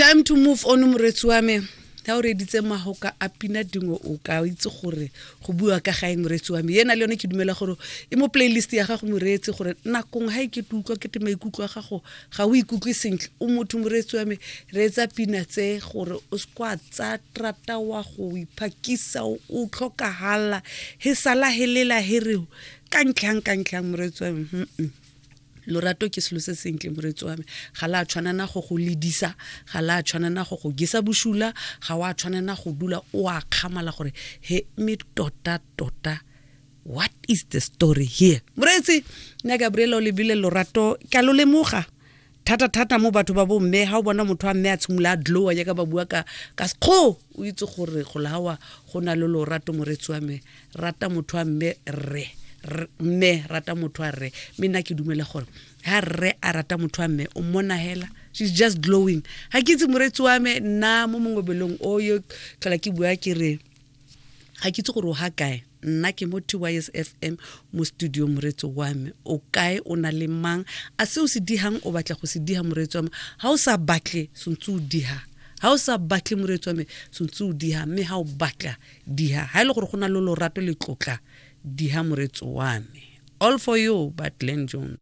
time to move on moretsi wa me ga o reditse magoka a pina dingwe o ka itse gore go bua ka gae moreetsi wa me ena le yone ke dumela gore e mo playlist ya gago moreetsi gore nakong ga e ke te utlwa ke te maikutlo a gago ga o ikutlwe sentle o motho moreetsi wa me reetsa pina tse gore o sekwa tsa trata wa go iphakisa o tlhokagala he sala helela hereo ka ntlhang ka ntlhang moreetsi wa me lorato ke selo se sentle moretsi wa me ga la tshwanana go go ledisa ga la tshwanana go go gesa bosula ga wa tshwanana go dula o a kgamala gore he me tota tota what is the story here moreetsi nna gabriela o lebile lorato ka lo lemoga thata thata mo batho ba bo mme ha o bona motho wa mme a tshimola a dlowa jaaka ba bua ka ka sekgo o itse gore go lawa go na le lorato moretsi wa me rata motho wa mme rre mme rata motho wa rre mme nna ke dumela gore ha rre a rata motho wa mme o mmona hela she's just glowing ga ke itse moretsi wa me nna mo mongwe belong o yo tlhola ke bua ke re ga ke itse gore o ga kae nna ke mo tys fm mo studio moretso wa me o kae o na le mang a se o se dihang o batla go se diha moretso wa me ga o sa batle sontse o diha ga o sa batle moretso wa me sontse o diha mme ga o batla diha ha ile e gore go na le lorato le tlotla diha moretso wa me all for you but Glen Jones